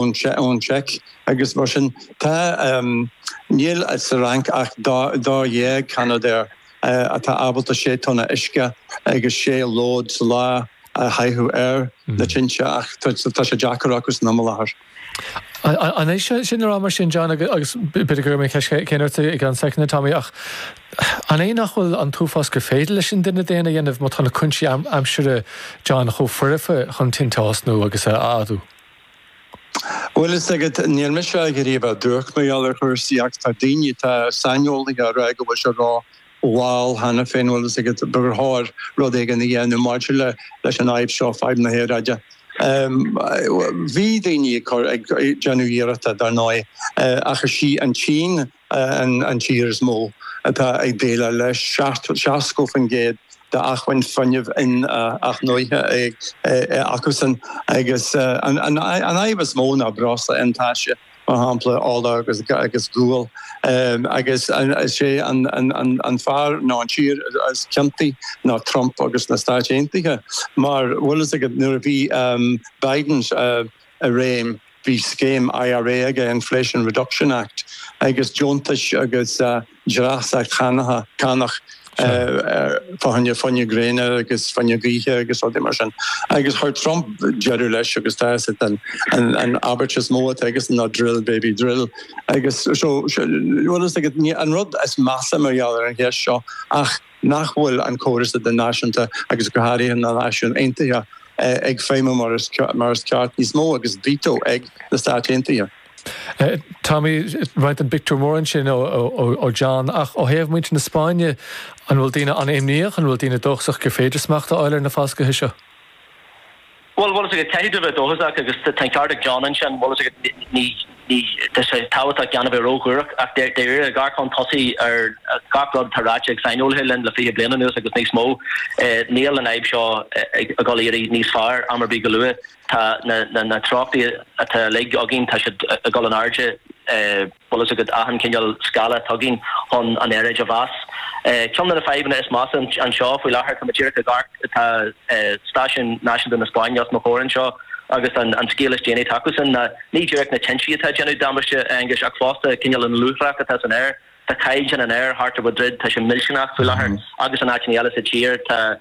ón tSeic agus mar sin tá. Níl sa Fhrainc ach dá dhéag Canadair atá ábalta sé thonna uisce agus sé lód sa lá a chaitheamh ar na tinte ach tá sé deacair acusan i mbaol áfach. An é sin le rá mar sin, John, agus b'fhéidir go raibh mé ag ceist céanna ort i gceann soicind, a Tommy, ach an é nach bhfuil an t-uafás gur féidir leis an duine daonna a dhéanamh má tá na cúinsí aimsire, John, chomh foirfe chun tinte a thosnú agus a fhadú? Bhfuil fhios agat, níl mise ag iarraidh a bheith duairc mar gheall ar chúrsaí ach tá daoine atá saineolaithe á rá go bhfuil sé rómhall cheana féin, bhfuil fhios agat, ba chóir rud éigin a dhéanamh maidir leis an fhadhb seo, fadhb na haeráide. Bhí daoine ag déanamh iarrachta, dar ndóigh, ach is í an tSín, an tír is mó atá ag déileáil leis, 70% d'acmhainn fuinnimh inathnuaite acusan, agus an fhadhb is mó ná breosla iontaise, mar shampla, ola agus gual. Agus is é an fear nó an tír is ciontaí ná Trump agus na Stáit Aontaithe, mar bhfuil fhios agat, nuair a bhí Biden, i réim. Bhí scéim IRA aige, Inflation Reduction Act, agus deontais agus dreasachtaí cánach faoi choinne fuinneamh gréine agus fuinneamh gaoithe agus rudaí mar sin. Agus chuir Trump deireadh leis agus tá an abairt is mó atá aige ná drill, baby, drill. An rud is measa mar gheall ar an gceist seo ach, nach bhfuil an córas idirnáisiúnta agus go háirithe na Náisiúin Aontaithe ag feidhmiú mar is ceart níos mó agus veto ag na Stáit Aontaithe. Tommy, roinnt den phictiúr mór ansin ó John ach ó thaobh muintir na Spáinne, an bhfuil daoine an-imníoch, an bhfuil daoine dóchasach gur féidir smacht a fháil ar na falscaithe seo? Bhuel, bhfuil fhios agat, caithfidh tú a bheith dóchasach agus tá an ceart ag John ansin, bhfuil fhios agat, ní, ní, tá sé tábhachtach gan a bheith róshuarach ach dáiríre, dearcann tusa ar gach rud atá ráite ag saineolaithe linn le fiche bliain anuas agus níos mó, níl an fhadhb seo ag dul ag éirí níos fearr am ar bith go luath, tá na, na, na treochtaí atá uilig againn, tá siad ag dul in airde. bhfuil fhios agat achan chineál scála atá againn chun an aeráid a mheas. Ceann de na fadhbanna is measa anseo faoi láthair, tá mé díreach ag amharc, tá stáisiún náisiúnta na Spáinne os mo chomhair anseo agus an scéal is déanaí atá acusan ná, ní díreach na tinte atá ag déanamh damáiste, a Aonghuis, ach fosta cineál an luaithreach atá san aer. Tá cáilíocht an aeir thart ar Mhadrid, tá sé millteanach faoi láthair agus in áiteanna eile sa tír. Tá.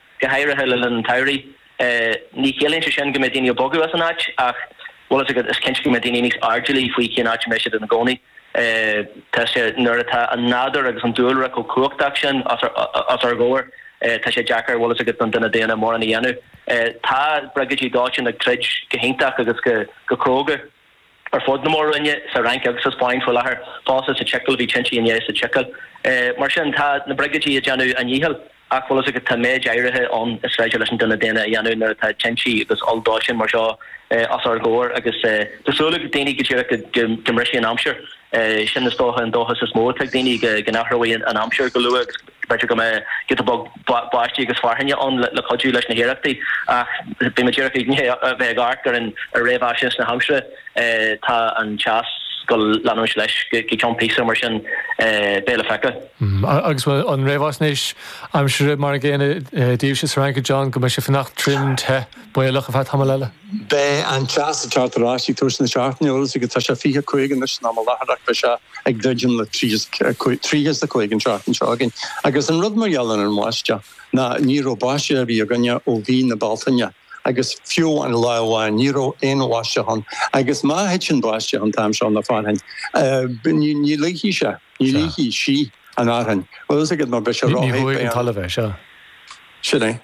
go háirithe le linn an tsamhraidh. Ní chiallaíonn sé sin go mbeidh daoine ag bogadh as an áit ach bhfuil fhios agat, is cinnte go mbeidh daoine níos airdeallaí faoi cén áit a mbeidh siad ina gcónaí. Tá sé, nuair atá an nádúr agus an dúlra chomh cumhachtach sin os ár gcomhair, tá sé deacair, bhfuil fhios agat, don duine daonna mórán a dhéanamh. Tá briogáidí dóiteáin ag troid go hiontach agus go cróga. ar fud na mór-roinne, sa Fhrainc agus sa Spáinn faoi láthair, fosta sa tSicil, bhí tinte inné sa tSicil. Mar sin, tá na briogáidí ag déanamh a ndíchill, ach bhfuil fhios agat, tá méid áirithe ann is féidir leis an duine daonna a dhéanamh nuair atá tinte agus olldóiteáin mar seo os ár gcomhair agus tá súil ag daoine go díreach go mbrisfidh an aimsir sin is dócha an dóchas is mó atá ag daoine go n-athróidh an aimsir go luath agus go B'fhéidir go mbeidh giota beag báistí agus fearthainne ann le cuidiú leis na hiarrachtaí, ach beidh mé díreach i ndiaidh a bheith ag amharc ar an réamhfhaisnéis aimsire. Tá an teas go leanúint leis go cionn píosa, mar sin beidh le feiceáil. Agus an réamhfhaisnéis aimsire mar an gcéanna daoibhse sa Fhrainc, a John, go mbeidh sé fanacht tirim te? baolach ar feadh tamaill eile. Beidh an teas ag teacht ar ais ag tús na seachtaine, a Róis, agus tá sé fiche cúig anois in am i láthair, beidh sé ag druidim le tríocha, tríocha a cúig an tseachtain seo chugainn, agus an rud mar gheall ar an mbáisteach ná ní raibh báisteach ar bith againne ó mhí na Bealtaine agus fiú amháin lá amháin ní raibh aon bháisteach ann agus má thiteann báisteach an t-am seo nó fearthainn ní, ní luífidh sé, ní luífidh sí an fhearthainn, bhfuil fhios agat, mar beidh sé ró-the, beidh an talamh, sea, sin é.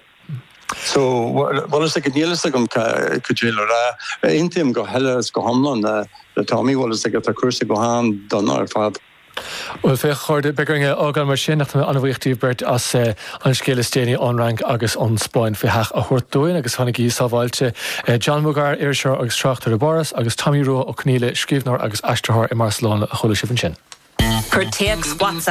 Bhuel, tá a fhios agat, níl a fhios agam cad é le rá. Aontaím go huile is go hiomlán le Tommy, tá a fhios agat, tá cúrsaí go han-dona ar fad. Bhuel, féach a chairde, beidh orainn a fhágáil mar sin, ach tá mé an-bhuíoch díbh beirt as an scéal is déanaí ón Fhrainc agus ón Spáinn faoi seach a thabhairt dúinn agus fanaigí sábháilte. John Boogr, iriseoir agus tráchtaire i bPáras, agus Tommy Rua Ó Conaíle, scríbhneoir agus aistritheoir i mBarcelona, a chuala sibh ansin. Cuir téacs WhatsApp.